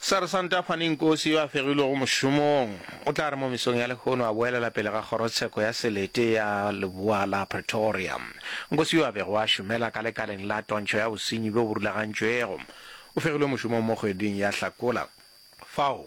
Sersanta Fanny Nkosi yo a fegilwego mošomong o tla re mo mesong ya lehono a boelela pele ga kgorotsheko ya selete ya leboa la Pretoria. Nkosi yo a bego a šomela ka lekaleng la tontšho ya bosenyi bjo bo rulagantšwego o fegilwe mošomong mo kgweding ya Hlakola fao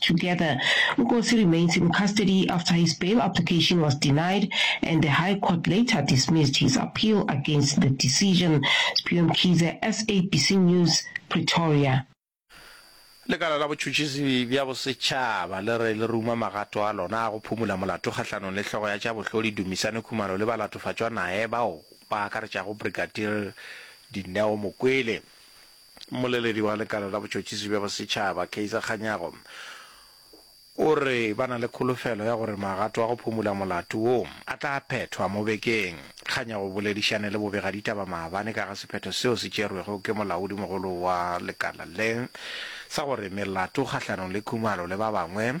Together, Nkosi remains in custody after his bail application was denied and the High Court later dismissed his appeal against the decision. Sphiwe Mkhize, SABC News, Pretoria. Lekala la botšhotšhisi bja bosetšhaba le re le ruma magato a lona a go phumula molato kgahlanong le hlogo ya tša bohloli Dumisani Khumalo le balatofatšwa nae bao ba akaretšago Brigadier Dineo Mokwele. Mmoleledi wa Lekala la Botšhotšhisi bja Bosetšhaba, Kaizer Kganyago, o re ba na le kholofelo ya gore magato a go phumola molato wo a tla phethwa mo bekeng. Kganyago o boledišane le bobegaditaba maabane ka ga sephetho seo se tšerwego ke molaodimogolo wa lekala le sa gore melato kgahlanong le Khumalo le ba bangwe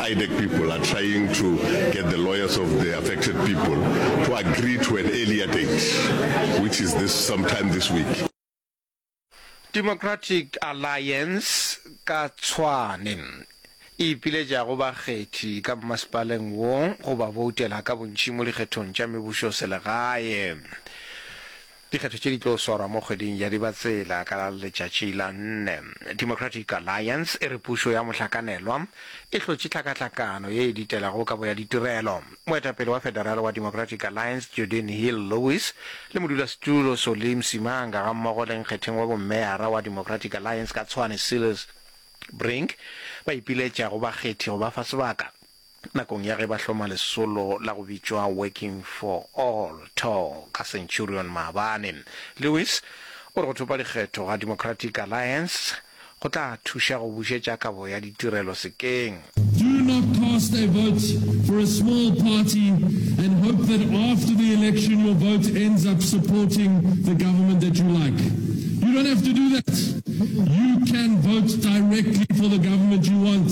IDEC people are trying to get the lawyers of the affected people to agree to an earlier date, which is this sometime this week. Democratic Alliance ka Tshwane e ipiletšago bakgethi ka mmasepaleng wo go ba boutela ka bontši mo dikgethong tša mebušoselegae. Dikgetho tše di tlo swarwa mo kgweding ya Dibatsela ka letšatši la nne. Democratic Alliance e re pušo ya mohlakanelwa e hlotše tlhakahlakano ye e ditelago kabo ya ditirelo. Moetapele wa federale wa Democratic Alliance Jordin Hill-Lewis le modulasetulo Solly Msimanga gammogo le nkgetheng wa bommeara wa Democratic Alliance ka Tshwane Silas Brink ba ipiletša go bakgethi go ba fa sebaka Nakong ya ge ba hloma lesolo la go bitšwa Working for All, too, ka Centurion maabane, Lewis o re go thopa dikgetho ga Democratic Alliance go tla thuša go bušetša kabo ya ditirelo sekeng. Do not cast a vote for a small party and hope that after the election your vote ends up supporting the government that you like. You don't have to do that. You can vote directly for the government you want.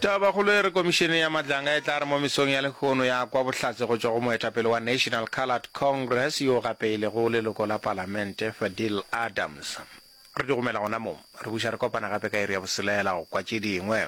Tabakgolo e re komišene ya matlanga e tla re mo mesong ya lekgono ya kwa bohlatse go tšwa go moetapele wa National Coloured Congress yo gape e lego leloko la palamente Fadil Adams. Re di gomela gona moo, re buša re kopana gape ka iri ya boselela go kwa tše dingwe.